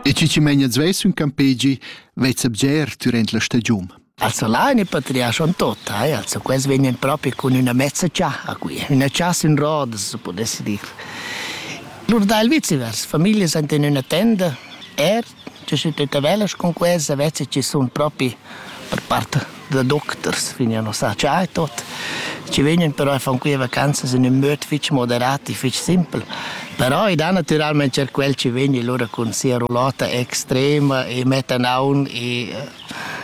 E chi chi meina svess ün campegi vezza bger dürant la stagiun. Also là in patriarchon tota, eh? also quels vegnan proprio con üna mezza ciaha qui, üna ciasa in rodas, se podesse dir. Lur dà il viceversa, familie sind in üna tenda, er Tü schi tütta velas cun questa vezza chi sun propi per part da docters, vegnan a sa cha e tot. Chi vegnan però e fan quia vacanzas in ün möd fich moderat e fich simpel. Però i da natüralmaing er quel chi vegni lura cun sia roulotta extrema e mettan aun e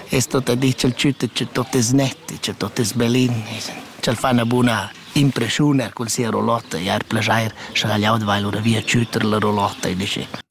es tot a dir cha'l tschüt e tot es net e cha tot es bellin e cha'l fa 'na buna impreschiun er cun sia roulotta e ar plaschair scha ch'el jau dvain lura via a tschütter la roulotta e disch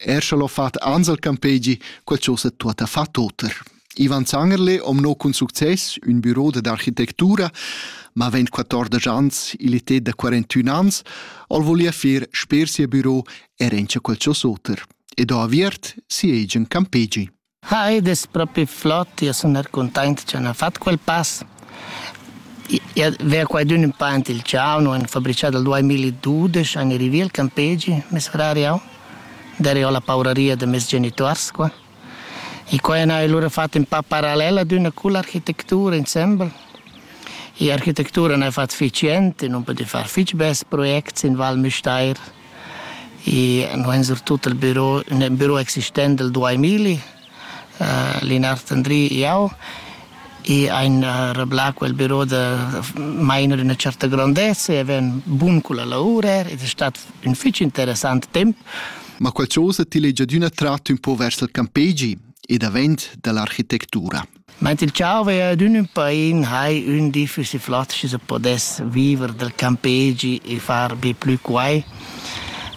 Er scha l'ho fat Ansel Campegi, quel chose tuotta fa toter. Ivan Zangerle om no cun success ün büro d'architettura, ma vent 14 ans, il était da 41 ans, ol volia fer sper sia büro er encha quel ciò soter. E do aviert siegen Campegi. Ah, ed es propi flot, io sun er cuntaint cha n'ha fat quel pass. I vea quaidün ün pa aint il ciao, no han fabrichà dal duemiladudesch, han rivì il campegi, mes frar e eu. Darei ho la pauraria da meis genituors qua. E qua han eir lura fat ün pa parallel ad üna cull'architectura insembel. E architectura n'ha fat fich jent e nun pudü far fich bels projects in Val Müstair. E no ein surtut il biro, il biro existent del 2000, uh, Linard Andri e eu, e ein uh, reblà quel biro da mainer una certa grandezza e ven bun con la lavora ed è stato un fitch interessant temp. Ma qualcosa ti legia d'una tratto un po' vers il campegi e davent dall'architettura. Meint il tscharvei ad ün ün pain hai ün di füssi flatsch se podess viver dal campegi e far be plü quai.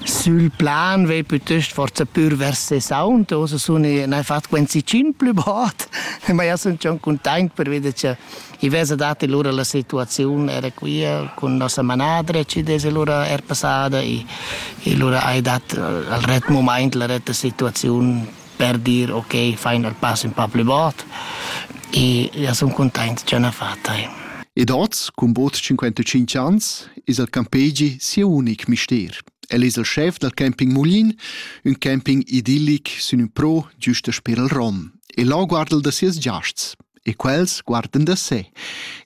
Sül plan vei pütöst forsa pür vers ses aunt, ossa sun i n'hai fat quinsi tschient plü bod, ma jau sun schon cuntaint pervida cha i vesa dat lura la situaziun era quia cun nossa manadra e chi desa lura er passada e e lura hai dat al ret mumaint la retta situaziun per dir ok, fain el pass ün pa plü bod e ja sun cuntaint cha n'ha fat eir. Ed hoz, cun bod 55 ans, es il campegi sia unic mister. El es il schef dal camping Mulin, ün camping idillic sün ün pro giusta sper il Rom. E là guarda'l da sias giasts e quels guardan da se.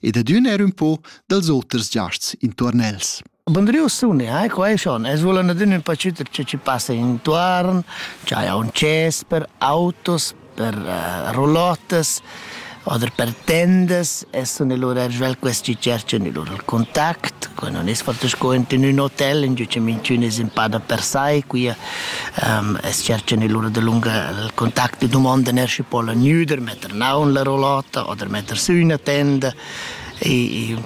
Ed ad ün er ün po dals oters giasts intuorn els. Bondriu suni, hai qua è schon. Es vulan adin ün pacüter che ci passa intuorn, c'haja un ces per autos, per uh, roulottes oder per tendas e suni lur er svelt quest chi cerchan i lur contact. Qua non es forte sco in ün hotel, in giu che minchün es in pa da per sai, qui um, es cerchan i lur da lunga il contact e domondan er schi pola gnüder metter naun la roulotta oder metter sü üna tenda. E, e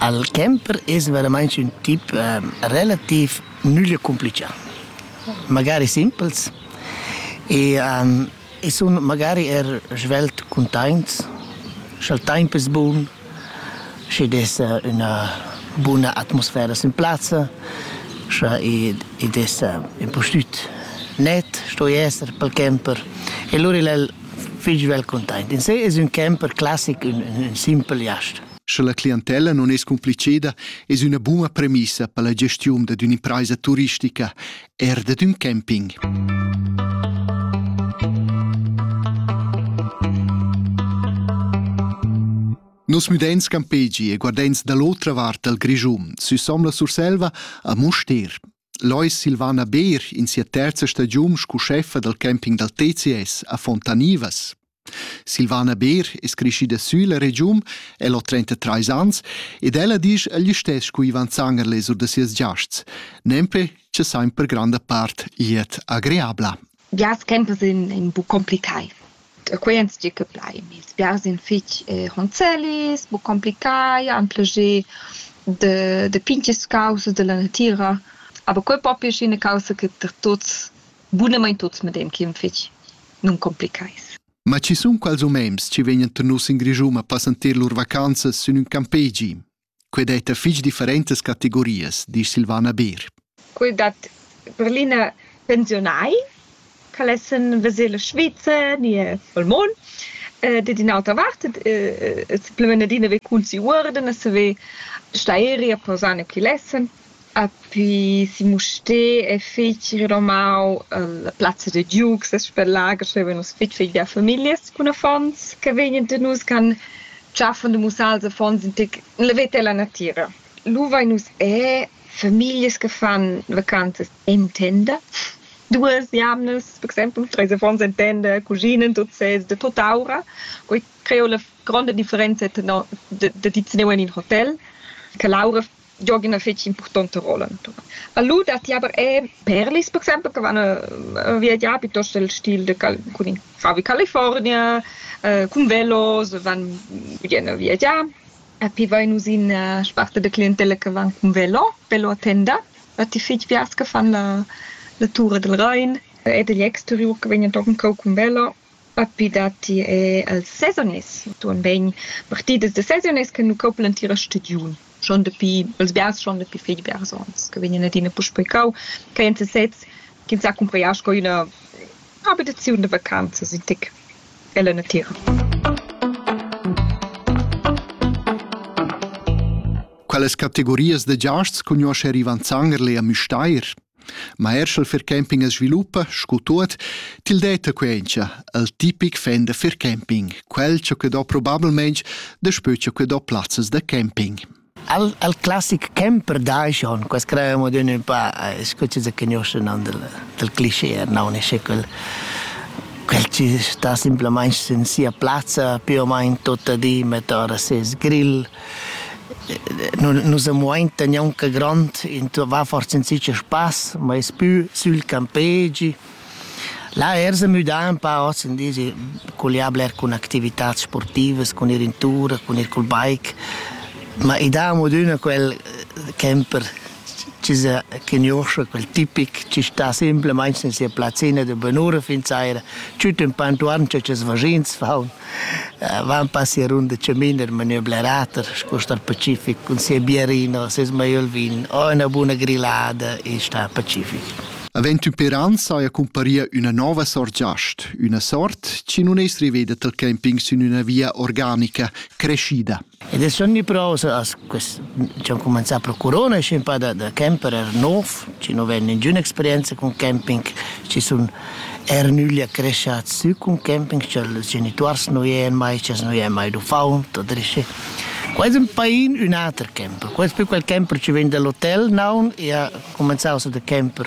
Al camper es veramaing ün tip relativ nüglia cumplichà, magari simpels e i sun magari eir svelt cuntaints scha'l taimp es bun, schi'd es üna buna atmosfera sün plazza, scha id es ün po stüt net sto i esser pel camper e lur il el fich svelt cuntaint. In se es ün camper classic, ün simpel jast. Sche la clientella non es compliceda, es üna buna premissa per la gestiun dad ün'impraisa turistica, eir dad ün camping. Nos müdents campegi e guardents da l'otra vart dal Grischun süsom la Surselva a Mustér. Lois Silvana Beer in sia terza stagiun scu scheffa dal camping dal TCS a Fontanivas. Silvana Beer es creschida sülla regiun, el ho 33 ans, ed ella disch egl istess cu Ivan Zanger lez sur da sias giasts, nempe che sain per granda part glied agreabla. Biars campers in, in bu complicai. E quei ans tgi che plai. Ils biars in fich eh, honzelis, bu complicai, han plascher de, de pinches causas della natira. Aber quei propi è scena causa che per tuts Bunamain tuts medem chi'm fich nuncomplichais. Ma chi sun quals homens chi vegnan tenus in Grischun a passanter lur vacanzas sün ün campegi? Quai detta fich differentas categorias, disch Silvana Beer. Quel dat per l'ina pensiunai, che lessen veser la Svizra ni el mond. Dad in'autra vart, simplemente d'ina ver cul si uorden e saver sta eri a posar ne chi lessen. Apri si Mustér e feci renomau la plazza da giug ses per lager, schevan nus fetg feglia famiglias cun affons che vegnan da nus che han tschaffan da mussar als affons in tec la veta e la natira. Lu vein nus er famiglias che fan vacanzas en tenda. Duas jamnas, per exempel, tra ils affons en tenda cuschinan tuts sez da tutt'aura. Quei creo la gronda differenza tenor da da tut teneu en in hotel, che l'aura giog ina fetg impurtonta rolla natuna. A lu datti aber er perlis, per exempel, che van äh, viagiar piuttost el stil de Cal cun in favi California, äh, cun velos, van vien a viagiar. A pi vai nus in äh, sparte de clientella che van cun velo, velo a tenda. A ti fitg piars che fan la, la tura del Rhein ed egli exteriur che vegnan tochen cau cun velo Dapi datti er els sezones entuorn bain partidas da sezones che nu coplan l'entira stagiun. Schon dapi bels biars, schon dapi fich biars ons che vegnan adina puspei cau. Quai èn sesezs ch'ins ha cumprà sco üna abitaziun da vacanzas in tic ella natira. Qualas categorias da giasts cugnuoscha Rivan Zangerle a Müstair? Ma er sch'el fircamping as sviluppa, scu tuot, til detta quencha, el tipic fan da fircamping, quel cha que do probablmaing daspö cha que do plazzas da camping. El, el classic camper dai schon, quas crevamo d'ün ün pa, eh, scu chi se conosce non del, del cliché, no ne sce quel quel ci sta semplamaing in sia plazza più o meno tutta di, met ora ses grill, Nus amuoin aunc aunc grond, va forsa in zicher spass, ma es pü sül campegi. Là ers a müdar ün pa hoz in dis, collià bler cun activitats sportivas, cun ir in tur, cun ir cul bike, ma i da amo adüna quel camper. chi sa cugnuoscha quel tipic chi sta simplamaing sin sia plazzina da bunura fin saira, tut ün po intuorn cha ches vaschins faun, vaun pas sia runda chamin in maniera blerater sco star pacific cun sia biarina, seis maiöl vin o üna buna grillada e star pacific. Avend ün per ans saja cumparia üna nouva sort giast, üna sort chi nun es riveda tal camping sün üna via organica, creschida. Ed es ogniprosa as quist diciamo cumanzà pro Corona schi ün pa da da camperer nouv, chi nu vain ningüna experienza cun camping, chi sun eir nügli accreschats sü cun camping, scha'ls genituors nu viean mai, sch'els nu viean mai d'uffaunt o drichy. Quai es ün pain ün ater camper, quai es più quel camper chi vegn da l'hotel, naun, i ha cumanzà ossa da camper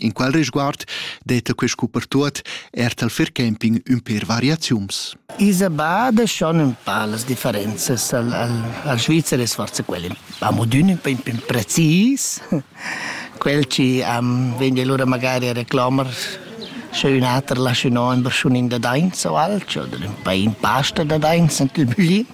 In qual risguard detta quest cupertuot er tal fair camping ün per variaziuns. Isa bada schon un pa las differenzas al, al, al Svizzer es forse quel amo d'ün un po precis, quel ci am vegna lura magari a reclamar sche un ater lascia no in berschunin da dainz o alch oder un pa in pasta da dainz ant il bugli.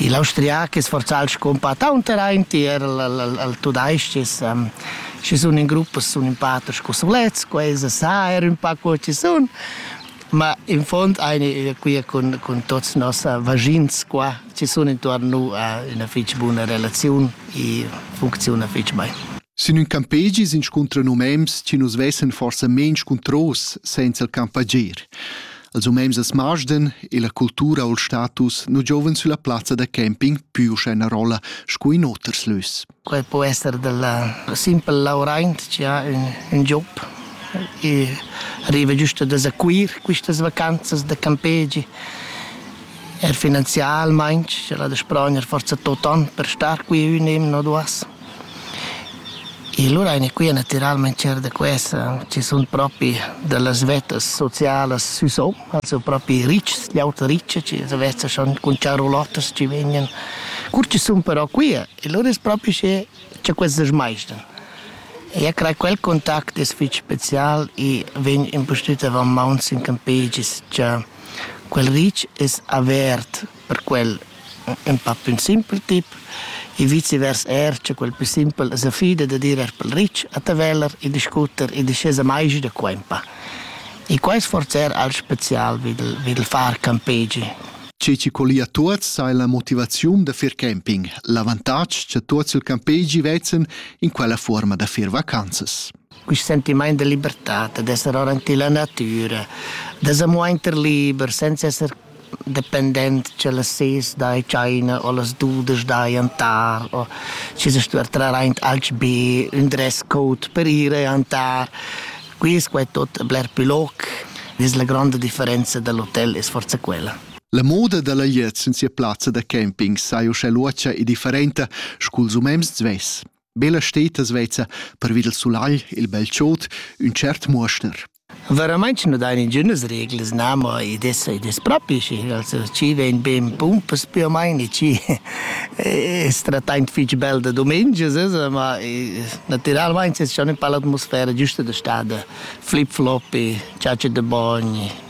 Il austriac es forzal scumpatt aunter aint tier il, il, il tudais-ches. Um, ci sun in gruppas sun ün pa aters cu sulets, quaisa sa er ün pa co ci sun, ma in fond eine quia cun, cun tuots noss vagins qua, ci sun intuorn nu üna fich buna relaziun e funcziuna fich bain. Sin ün campegi s'inscuntran umems chi nus vessen forsa main scuntros senza il campager. als umens da Smarsden e la cultura o il status nu giovens sulla plazza da camping pü uschè na rolla scu in oters lös. Quai po esser della simpel lauraint che ha ün, ün job e arriva giusto da sequir quistas vacanzas da campegi er finanzialmain, ce la da sprogner forza tot an per star qui ün im no duas. E lura aina qui natüralmaing tschert da questa chi sun propi da las vettas socialas sü sò, also propi ritschs, gl'auta richa chi las vezzas sun cun charulottas chi vegnan. Cur chi sun però qui e lura es propi sche cha queste smaisdan. Eu craj quel contact es fich special e vegn impustüt avant mauns in campegis cha quel ritsch es avert per quel ün pa plü simpel tip e vicevers eir cha quel plü simpel as affida da dir eir pel ritsch a Taveler e discuter e discesa maigi da qua ün pa. E quai es forse eir al spezial vi dal vi dal far campegi. Che ci collia tuots sai la motivaziun da fer camping, l'avantatg cha tuots il campegi vezzan in quella fuorma da fer vacanzas. Quist sentimaint de libertà, d'esser ora in la natura, da s'amuainter liber, senza esser dependent che las ses dai China o las dudas dai antar o ci se stuer traraint alch be ün dress code per ire antar quis qua è tot bler più loc vis la gronda differenza dell'hotel es forza quella La moda da la glieud sin sia plazza da camping saja uschè luotscha e differenta scu'ls umens svess. Bella stetas vezza pervi del sulagl il bel chod ün cert muoschner. Verament nu dain ingünas reglas, na, ma id es, id es propi schi. Also, chi vegn be in pumpas più o meno, chi es trattaint fich bel da dumengias, esa, ma natüralmaing es schon ün pa l'atmosfera giüsta da stà da flip-floppy, ciaci da bogn,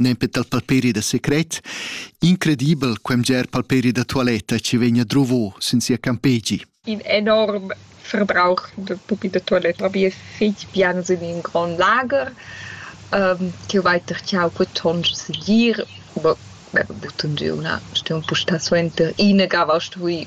nempe dal palperi da secret, incredibel quem ger palperi da toiletta ci vegna drovo sin sia campegi. In enorm verbrauch de pupi de toiletta. Vi è fitg bien sin in grand lager, um, che weiter ciao butonj sedir, aber butun giuna, stiamo pusta suenter ina gava stui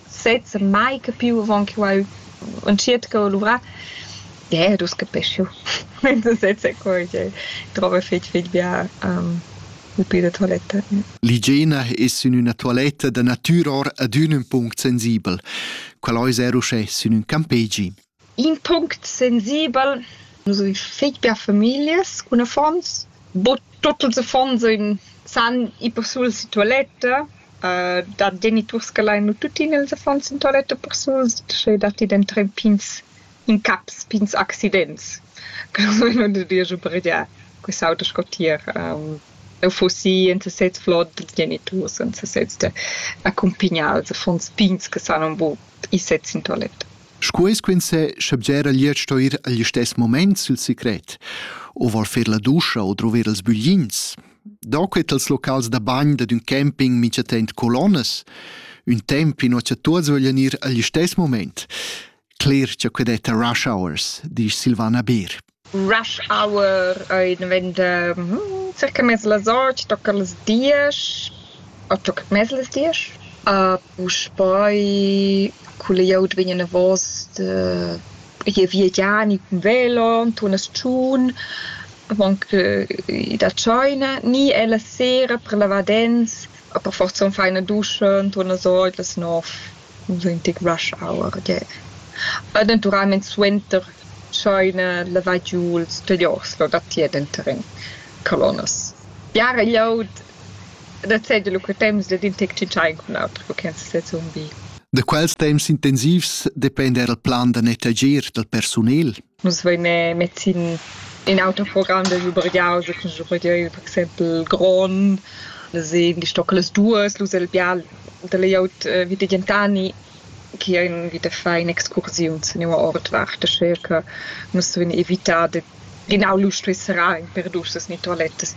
sezs mai capiu avon che quei entschiet co luvrar. Ie, dus capischu. Sezs è quei che trova fetg fetg bia pupi da toiletta. L'igiena es sün üna tualetta da natüra or ad ün ün punct sensibel. Quel ais er uschè sün ün campegi. In punct sensibel, nus havein fetg bia famiglias cun affons. Bod tuts ils affons ein san ir persuls in tualetta. da geniturs che lain nu tuttina ils affons in tualetta persuls, sche datti denton pigns incaps, pigns accidents che nus vein ussa dueigi obergiar quest'auter sco tier eu fussi en sesez flot dils geniturs, en sesez d'accumpignar ils affons pigns che san aunc buc ir sez in tualetta. Sco es quinzè, scha bgera glieud sto ir agl istess moment sül secret, o vor fer la duscha o druver els büglins. Da quet als locals da bagn dad ün camping mincha temp colonnas, ün temp in cha tuots voglian ir agl istess moment. Cler cha que detta rush hours, disch Silvana Beer. Rush hour ei dventa circa mez las otg, tocca las diesch o tocca mez las diesch. Puspei cun la glieud vegn anavos gie via Giani cun velo entuorn a Schun, avon che i dat tscheina, ni è la sera per lavar dents, per forza fai ina duscha entuorn las otg, las nov. ventg rush hour gie. E naturalmein suenter tscheina lavai giu ils playoffs lo datier denter in colonnas. Biara glieud da seigi lu quei temps dad in tec tschintschar cun l'auter co che ins sezun bi. Da quels temps intensivs dependa era il plan da nettegiar dal persunel. Nus vein mett sin in autoprogramm da schubergiaus e cun schubergiar per exempel grond. Nus ein gestocca las duas, lu el bial da layout vita Gentani chi ein vita fein excursiuns en ina ordvart aschia che nus vein evitar da genau lu stuer serrar in per duschas ni toalettas.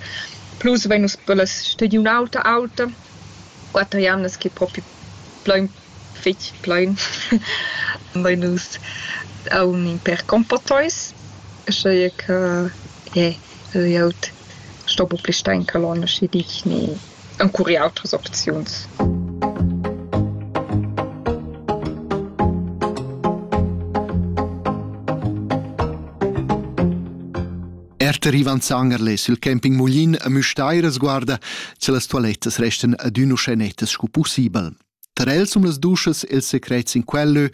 Plus vein nus per la stagiun auta auta quatter jamnas che propi plein fetg plein. Vein nus aunc per compoteis, uschia che eh, jeu sto buca pli star in colonna, sche dic ni encuri autras opziuns. Erter Ivan Zangerle sil camping Muglin a Müstair sguarda, se las toilettas restan adün uschè nettas sco pussibel. Tar el sun las duschas ils secrets in quellö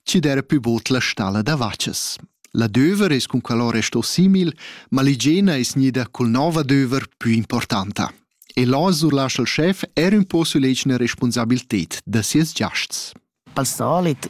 chi d'eira pü bod la stalla da vachas. L'adöver es cun quel ora sto simil, ma l'igiena es gnida cul nouv adöver pü importanta. E là surlascha il schef er ün po sulegna respunsabilted da sieus giasts. Al solit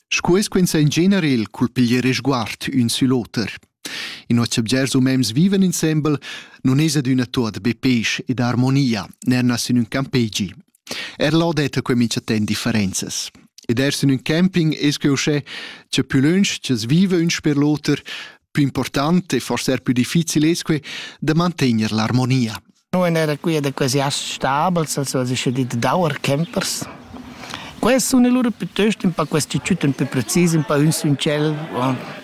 Sco es quinsa in genere il culpiglier resguard ün sül oter. In noss subgers umens vivan insembel, non es adüna tuot be pesch ed armonia, nernas in ün campegi. Er là detta que mincha temp differenzas. Ed ers in ün camping es que uschè, cha più lönch ch'as viva ün sper l'oter, più important e forse er più difficil es que da mantegner l'armonia. Nu en era quia da quasi as stabels, als as ischa dit d'auer campers. Quels sun alura pütöst ün pa questi tschüt ün pü precis, ün pa ün sün tschel.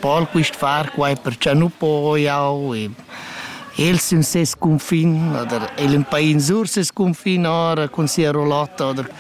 Pol quist far quai perchà nu po jau e el sün ses cunfin oder el ün pa in sur ses cunfin ora cun sia rulotta oder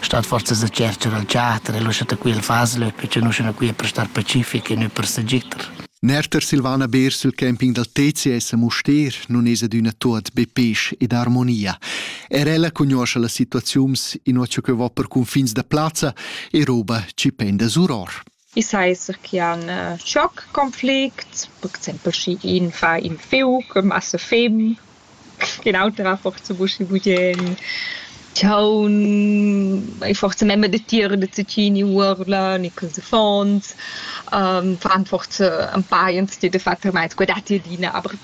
stat forzas a tschercher al teater e lascha da quella fasa lö perche nu sun quia per star pacific e nö per s'agiter. Nerter Silvana Beer sul camping dal TCS a Mustér nun es adüna tuot be pesch ed armonia. Er ella cugnuoscha las situaziuns, inua cha que va per cunfins da plazza e roba chi penda suror. I sa esser chi han schoc conflicts, per exaimpel schi iin fa in fiuc, massa fim, ün auter ha forsa buscha bugien, chaun, e forsa memma datier da zacchini uorlan e quels affonds, fan forsa ün pa ins di dafattamaing sco datti adina, aber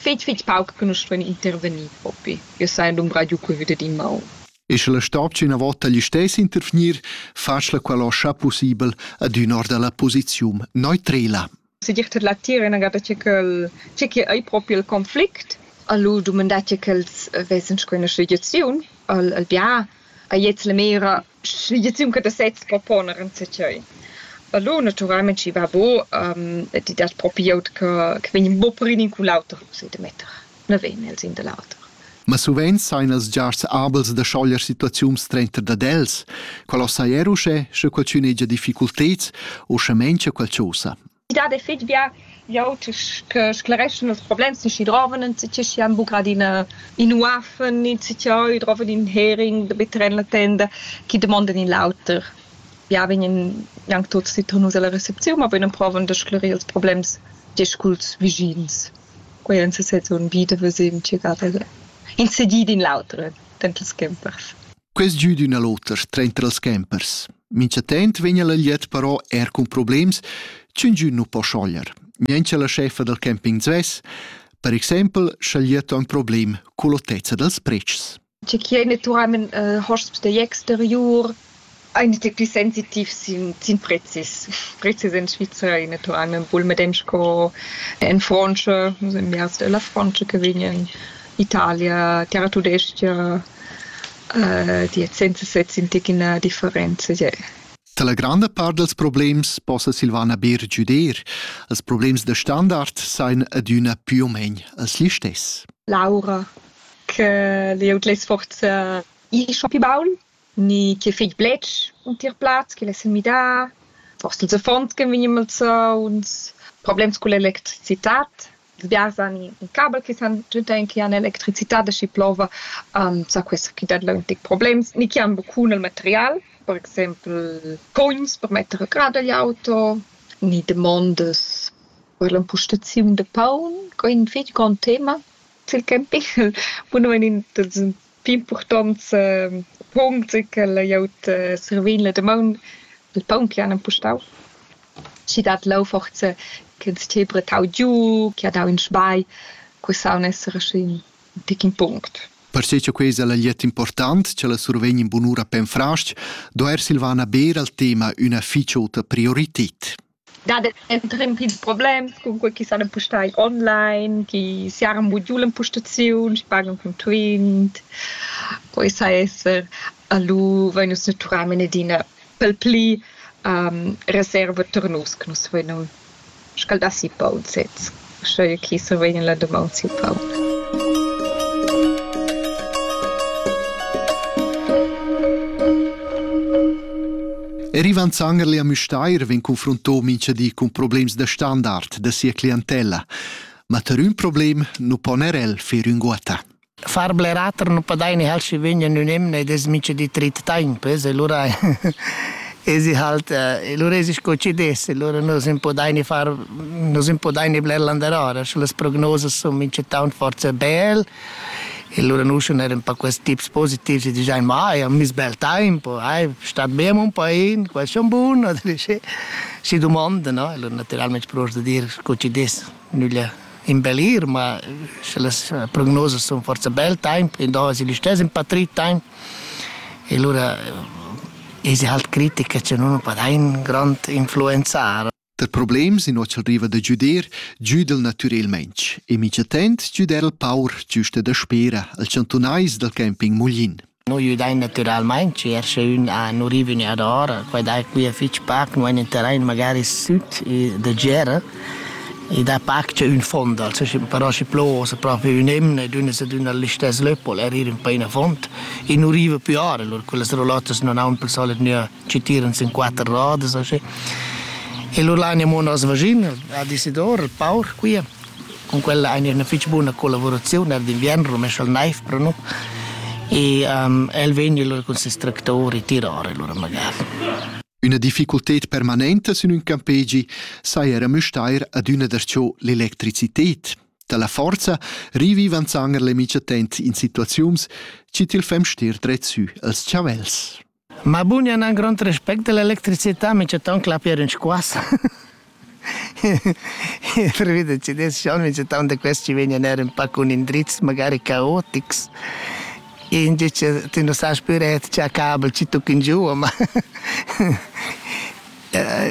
fetg fetg pauc che nus stuein intervegnir propi. Io sai dumbra giu cur vit ad in maun. E sche la stopcha ina vota gli stess intervgnir, facla quella scha possibel adün or dalla posizium neutrela. Se dir tot la tira inagada che quel che che ei proprio il conflict alu dumandar che quels vessen sco soluziun al al bia a jetzt le mera soluziun che da sets proponer in secei Allora naturalmente ci va bo um, di dat proprio che che vegn bo prin in cu l'auter se de metter. na vegn el sin da l'auter. Ma suveins sain els giars abels da schoglier situaziuns trenter dad els, qual os sai er uschè, sche qualchün hegia difficulteds o sche mengia qualchosa. I dat e fitg bia jau che sclereschan ils problems che droven en ci chi han buca adina in uaffen in ci chi droven in hering da bitter en la tenda chi demonden in lauter ja vegnen jang tuts die tun nus alla reception ma vegnen proven da sclerir ils problems diesculs vigins Quei en sesezun bi da veser tgagada il segir d'in l'auter denter ils schempers. Quest giu d'üna l'oter trenta els schempers. Minchatent vegna la gliet però er cun problems ch'ün giu nu po schoglier. Niencha la chefa dal camping svess, per exempel, scha gliet ho ün problem cull'otezza dals pretschs. tge chi ei natüralmaing äh hosps dagl exteriur, aint dil plü sensitiv sin sin prezis. Prezis in Svizra ei natüralmaing bul medem sco in Frantscha, in biars della Frantscha che vegnan, Italia, terra-tudestga, äh die Zinse setzen tic in la differenza. Yeah. Dalla granda part dals problems possa Silvana Beer giuder. Els problems da standard sain adüna pü o main els listess. Laura, che glieud less forsa ir schon pi baul, ni ch'el fegl bletsch untir plaz, ch'el less midà, forsa ils affons ch'en vegni malsauns, problems culla electricitad. Ils biars han in cabel che san giuntain che han electricitad e schi plova sa questa chi dat leu tic problems, ni chi han buccun el material, per exempel cogns per metter a grad egl auto, ni damondas per l'empustaziun da paun, quei ei in fetg grond tema. Ch'el capiel bunamain dat ün pi impurtant punct che ch'el ha gnüt servì la damaun, il paun chi han impustau. Schi dat leu forsa ch'ins tii brettau giu, chi ha dau ün sbai, que saun esser aschi ün tic impunct. Perche cha quei es el agliet important cha la survegn in bunura Penfrastg, do eir Silvana Beer al tema üna fich ota priorited. dat emprem pils problems, cunquei chi san empustar online, chi siaran buc giu l'empustaziun, pagan cun Twint. Poi sa esser, a lu vein nus natüralmein adina pel pli reserva tar nus che nus vein schaldà si paun sez. sche chi survegn la dumang siu paun. Rivan Zangerli a Müstair vegn confronto mincha di cun problems da standard da sia clientella. Ma tar ün problem nu pon er el fer ünguotta. Far bler ater nu padaini ha'l schi vegn in ün emna ed es mincha di trit taimp, es e lura esi halt e lura esi sco chi dess e lura nus nun podaini far nus nun podaini bler landerora, sche las prognosas sun minchatant forsa bel e lura nus sun eir ün pa quels tips positivs e digiain ma ai ho miss bel taimp o ai stat bem un pa in, quai sun bun oder schi schi dumond, no? E lura natüralmaing pro'ls da dir sco chi dess nüglia. in bel ir, ma sche las eh, prognosas sono forse bel tempo, in dove si listess in patrit tempo. E allora eh, è halt critica che non fa un grande influenzare. Der problem sin ocel riva da giuder giudel natürelmaintg e mica tent giuder il paur giusta da spera al chantunais dal camping Muglin. Nus güdain natüralmaing tscher sche ün ha nu riva ün jard ora, quai dà quia fich pac, nu ain ün terrain magari süt da gera e dà pac che ün fond also, però schi plos propi ün emna ed üna ad üna l'istess löppel e riva ün pa ina font e nu riva più ora, alura quellas rolottas nun haun pel solit gnü chi tiran sin quatter rodas o schi. E lur lain amo nos vaschin ad Isidor, il paur quia. Cun quella ein ina fetg buna collavuraziun er d'inviern rumescha il neiv per nu e um, el vegn allora cun ses tractor e tirar allora magari. Üna difficulted permanenta sün ün campegi sai era müstair adüna darcho l'electricited. Dalla forza rivivan zanger le mic attent in situaziuns, ci til fem stir dret sü als chavels. Ma bun, io n'ha grond respect della electricità, mi c'è tant clapir in squassa. Pervi da CDS-Sion mi c'è tant da questi ci vegnan er un pa cun indrizs magari caotics. Indi ti non sai più ret c'è kabel, ci tucchi in giù, ma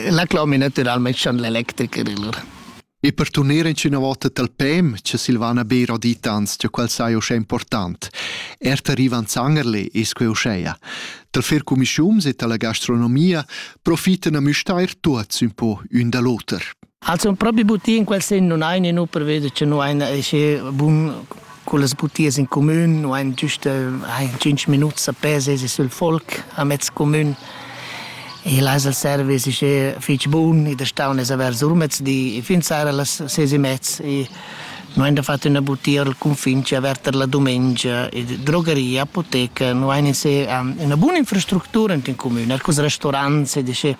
la cloma naturalmente schon l'elettrica. E per turner inschüna vota tal pem cha Silvana Beer ho dit ans cha quel saja uschè important. Erta Rivan Zangerle es que uschea. Tal fer cumischiums e tala gastronomia profitan a müstair tuots ün po ün da l'oter. Also propi buti in quel sen non hai nu per veder che nu hai na esce bun con las butias in comün nu hain giüst hain tschinch minuts a pè sesi sül folk a mez comün e l'ais al service ischè fich bun ed es staun es avert sur mezdi e fin sera las ses e mezz e nu hain da fat üna butia al cunfin chi averta la dumengia e drogeria, apoteca, nu hain in se üna buna infrastructura int ün comün, arcus restorants ed ischè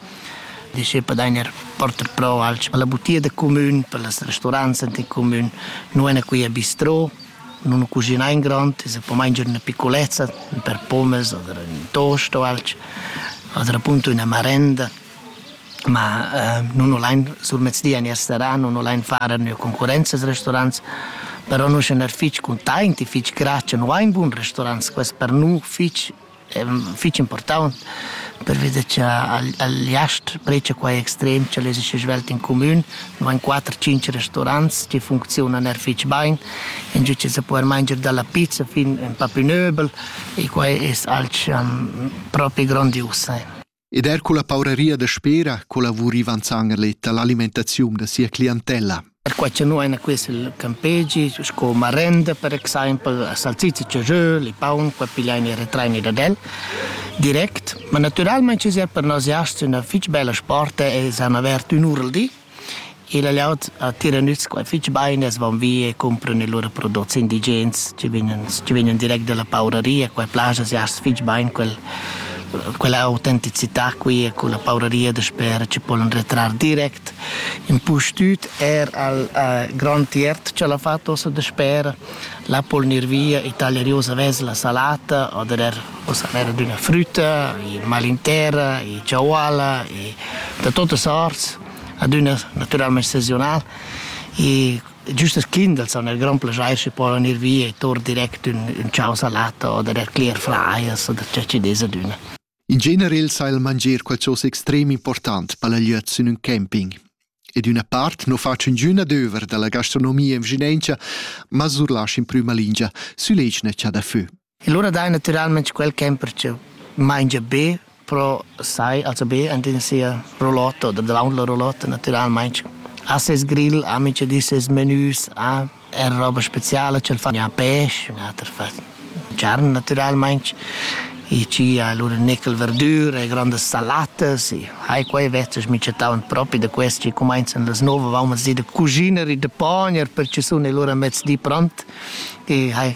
Disch eu padain eir porter pro alch per la butia da cumün, per las resturants ant in cumün. Nu ena qui a bistrò, nun ho cuschinà in grond, es po manger üna piccolezza, per pommes oder ün toast o alch, oter appunto üna marenda. Ma nun ho lain sur mezzdi ner serà, nun ho lain far a üna concurrenza als resturants, però nus ün er fich cuntaint e fich grazcha. Nu ha in bun resturants, quest per nu fich è fitg impurtant pervida che al jast precia quai extrem che les ische svelt in comün, van 4-5 restaurants che funzionan er fitg bain, in giu che se può manger dalla pizza fin un papinöbel e quai è alch um, propi grandius. Ed er culla pauraria daspera collavurivan Zangerlet all'alimentaziun da sia clientella. Perquai che noi acquist il campegi sco marenda per exempel a salsiccia ciajöl, il paun, qua pigliain e retrain da del direct, ma naturalmente es er per noss jasts üna fich bella sporta e s'han avert ün'ura al di Il aviart attira nüts quai fich bain e van via e cumpran i lur prodots indigens chi vegnan chi vegnan direct da la pauraria. Quai plas as jast fich bain quel quella autenticità qui e culla pauraria dasper chi polan retrar direct. Impustüt eir al grand tiert ch'al ha fat ossa dasper, là po'l gnir via e taglia rius avess la salata oder eir Ussa n'era d'üna frütta, i mal in terra, i ciauala, i da totas arts, adüna natüralmaing sezonal. E giüst als Kindels han er grand plaschair schi povan ir via e tour direct ün, ün ciao salata oder er clear fryers oder ciò chi dess adüna. In generel sa il manger qualchosa extrem important per la glieud sün ün camping. E d'üna part no fac üngün adöver da la gastronomia in Vginengia, ma surlasch in prüma lingia süleschna cha da fö. E lura dai natüralmaing quel ch'ha impartgieu. Maingia be pro sai, also be ant in sia roulotta oder davaunt la roulotta natüralmaing. Ha ses grill, ha minchadi ses menüs, ha er roba speciala ch'el fa, ha pesch, ater fa charn natüralmaing. I ci ha lura nickel verdür e grandas salatas e hai quai vezzas minchataunt propi da quest chi cumainzan las nouv avaunt mezdi da cusiner e da pogner per chi sun e lura mezdi pront e hai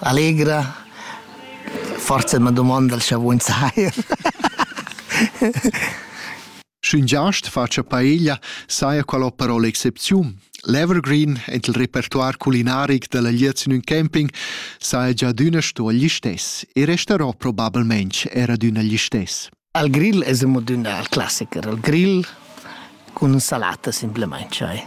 Allegra. Forsa ma dumonda scha vun sair. Sch'ün giast facia paeglia, saja qual ho parole excepziun. L'Evergreen ed il repertoire culinaric della liez in un camping saja già d'üna sto agli stess e resterò probabilmente era d'üna agli stess. Al grill es amo d'üna al classiker, il grill cun salata simplemente. Cioè.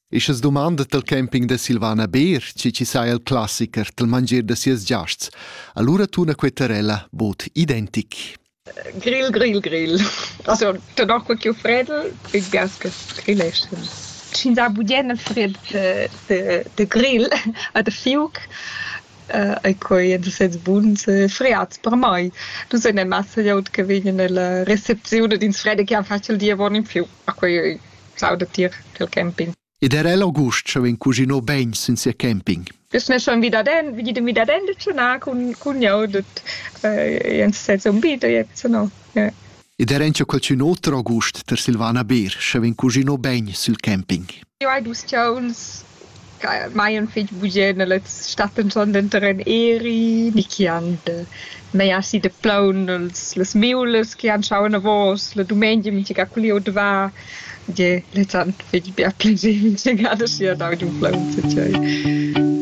E sche dumandet il camping da Silvana Beer, chi chi saja il classiker dal mangier da sias giasts, allura tuna quei Terella bod identic. Grill, grill, grill. Also, danach quel chiù fredel, ich weiß, que grill ist. Sch'ins ha budien il fred de, de, de grill a de fiuc, äh, e quei en sez buns äh, friats per mai. Dus eine Masse jaut che vegnen nella recepzione d'ins fredde che ha facil dir von in fiu. A quei sauda tier quel camping. Ed era el August schon vegn cuginò bein sin sia camping. Biz mir schon wieder den, wie dem wieder den schon nah kun kun jau det jens sez un bito jetzt no. Ja. Ed era encha qualcun oter August ter Silvana Beer, sche vegn cuginò bein sul camping. Jo hai dus chauns mai ün fich bugè nella stat inson denter ün eri ni chi han mei aschi da plaun las miulas chi han schau anavos la dumengia minchagà cul lieur da va. Ie, lezs han fich bger piager minchagà da schi a dau giù plaun tut sai.